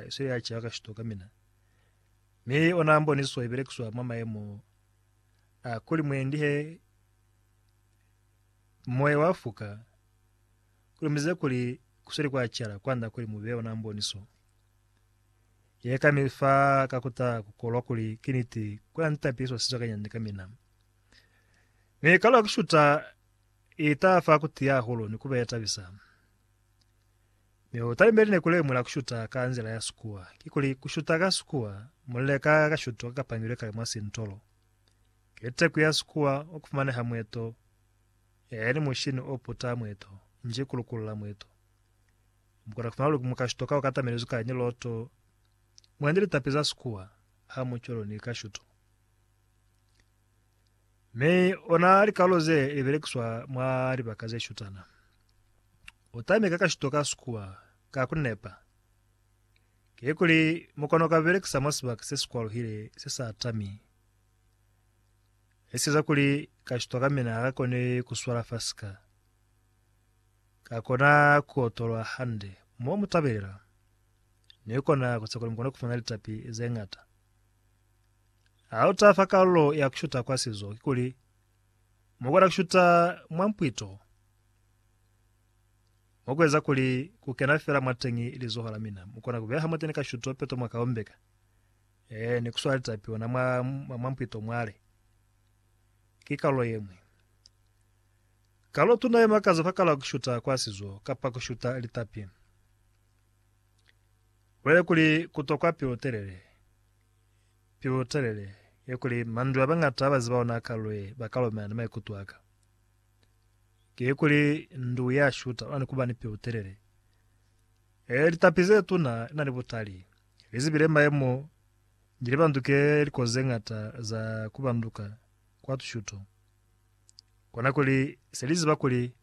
Sio ya caka shito ka mina. Mi ona mboniso ibelekiswa mwa maemo a kuli mwendi he moya wa fuka, kulumize kuli kusweli kwa cala kwanda kuli mube ona mboniso ye ka mi fa ka kuta kukolwa kuli ki niti kuna ni tapiliswa sica ka nyande ka mina. Mi kalo ki shuta ita fa kutiya hahulu ni kuba ye tabisa. Mi u talimeli ni ku lemula ku shuta ka nzila ya Sikuwa, kikuli, ku shuta ka Sikuwa, mulile ka ka shuto ka kapangilwe kale mwa sintolo. Ki teku ya Sikuwa o ku fumaneha mweto, yaya ni mushini o puta mweto, nji ku lukulula mweto. Mu kona ku fumana luli muka shuto ka o katamelizwi ka ni loto, mwendi litapi za Sikuwa, hamucwalo ni ka shuto. Mi ona likalo ze li belekiswa mwa libaka ze shutana. U tami ka kashito ka sikuwa ka ku nepa. Kikuli mu kona ku ka belekisa mwa sibaka se si kwaluhile se sa tami. Li sieza kuli kashito ka mina ha ka koni ku swala fa sika ka kona ku otolwa hande mo mu tabelela, ni kona ku tshepa kuli mu kona ku fumana litapi ze ñata. Ha u taha fa kalulo ya ku shuta kwa sizo, kikuli mu kona ku shuta mwa mpwito mwa ku eza kuli ku kena fela mwateñi lizoho la mina. Mu kona ku beha mwateni ka shuto peto mwa ka ombeka, ee, ni ku swala litapi ona mwa, mwa mpwito mwale. Ki kalulo ye ñwi. Kalulo tuna ye makaza fa kalulo ya ku shuta kwa sizo, kapa ku shuta litapi. Bulale kuli ku tokwa pelotelele. Pelotelele ye kuli mandu a bañata ba ziba ona kalu ye ba ka lomelana ni maikuto a ka, ki ye kuli ndu ya shuta ona ni ku ba ni pelotelele. Ee, litapi ze tuna li na ni butali. Li zibile mayemo ni li banduke likozi ze ñata za ku banduka kwa tushuto. Kona kuli se li ziba kuli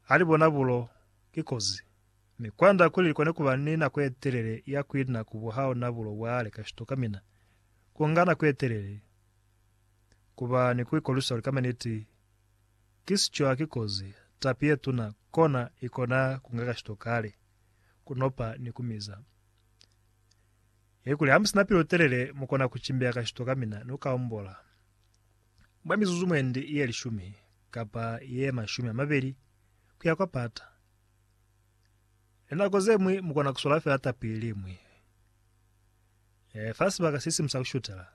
ha li bona bulo ki kozi. Mi kwand'a kuli likone kuba ni nako yetelele ya kuina ku buhao na bulo bwale ka shituka mina kunga nako yetelele kuba ni kuikolwisa kuli kama niti ki sico haki kozi, tapi yetuna kona ikona kunga ka shituka kale, kunopa ni kumiza. Ye kuli hamusina pilu telele mukona kucimbeya ka shituka mina ni kukaombola mwa mizuzu mwendi ye lishumi kapa ye mashumi amabeli kuya kwa pata. Linako zeñwi mukona kuswala fela tapi iliñwi fa sibaka sisimu sa kushutela,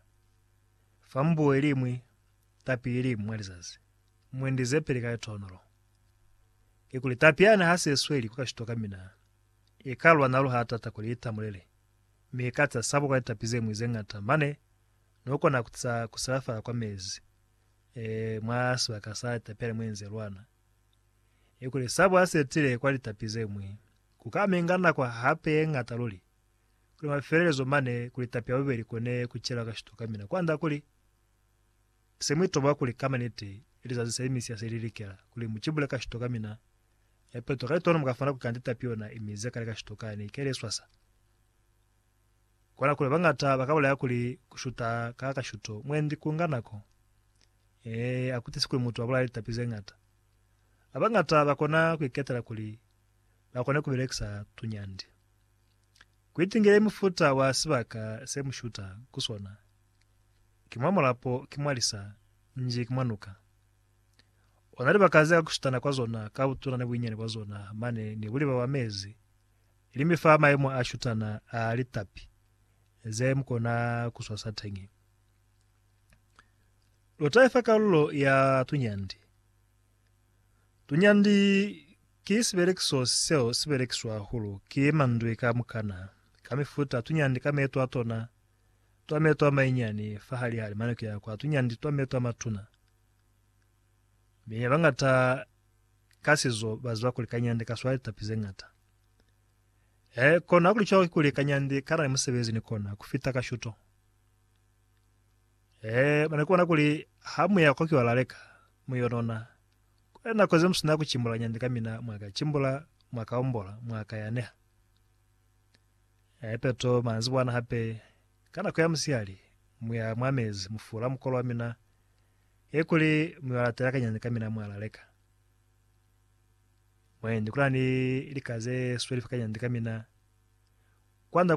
fa mbuo iliñwi, tapi iliñwi mwa lizazi, mwendi zepeli ka litonolo. Kikuli tapi yani hasesweli ku kashito kamina, ikalwa nalu haatata kuli itamulele, mi ikatsa sabo kwa litapi zeñwi zeñata mane nukona kutsa kusilafala kwa mezi mwa sibaka sa tapi yani mwenze lwana. I kuli Sabo a setile kwa litapi ze ñwi, ku ka minga nako hape ye ñata luli, kuli mafelelezo mane ku litapi ya bubeli ku ne ku chelwa kashito kamina kwand'a kuli se mu itoba kuli ka maniti lizazi se misi ya se li likela kuli mu cibule kashito kamina ya peto ka litono mu ka funa ku kanda itapi yona i mize kale kashito kani ke le swasa. Kola kuli bañata ba ka bulaya kuli ku shuta ka kashuto mwendi ku nga nako. Ee, a ku tisi kuli mutu a bulaya litapi ze ñata. A bañata ba kona ku iketela kuli ba kone ku belekisa tunyandi. Ku itingile mufuta wa sibaka se mu shuta ku sona, ki mwa mulapo, ki mwa lisa, nji ki mwa nuka. Ona libaka ze ka ku shutana kwa zona ka butuna ni buinyani bwa zona mane ni buliba bwa mezi Ili mi fa maimo a shutana a litapi ze mu kona ku swasa teñi. Lu tahe fa kalulo ya tunyandi. Tunyandi ki sibelekiso seo si belekiswa hahulu ki mandwi ka mukana ka mifuta a tunyandi ka meto a tona, twa meto a mainyani fa halihali mane ku ya kwa tunyandi twa meto a matuna. Mi bañata ka sizo baziba kuli kanyandi kaswala litapi zeñata. E, kono hakulicwalo kikuli kanyandi kanani musebezi ni kona kufita kashuto. E, bana kubona kuli ha muya kwa kiwala leka, muyo nona. Kuli nako ze musina kucimbula kanyandi kamina mwaka cimbula, mwaka ombola, mwaka yaneha. E, peto manzibwana hape, ka nako ya musihali, muya mwa mezi mufula mukolo wamina, He kuli muyolalata ya kanyani kamina mwalaleka. Mwendi kulani lika ze sweli fa kanyani kamina. Kwanda kuli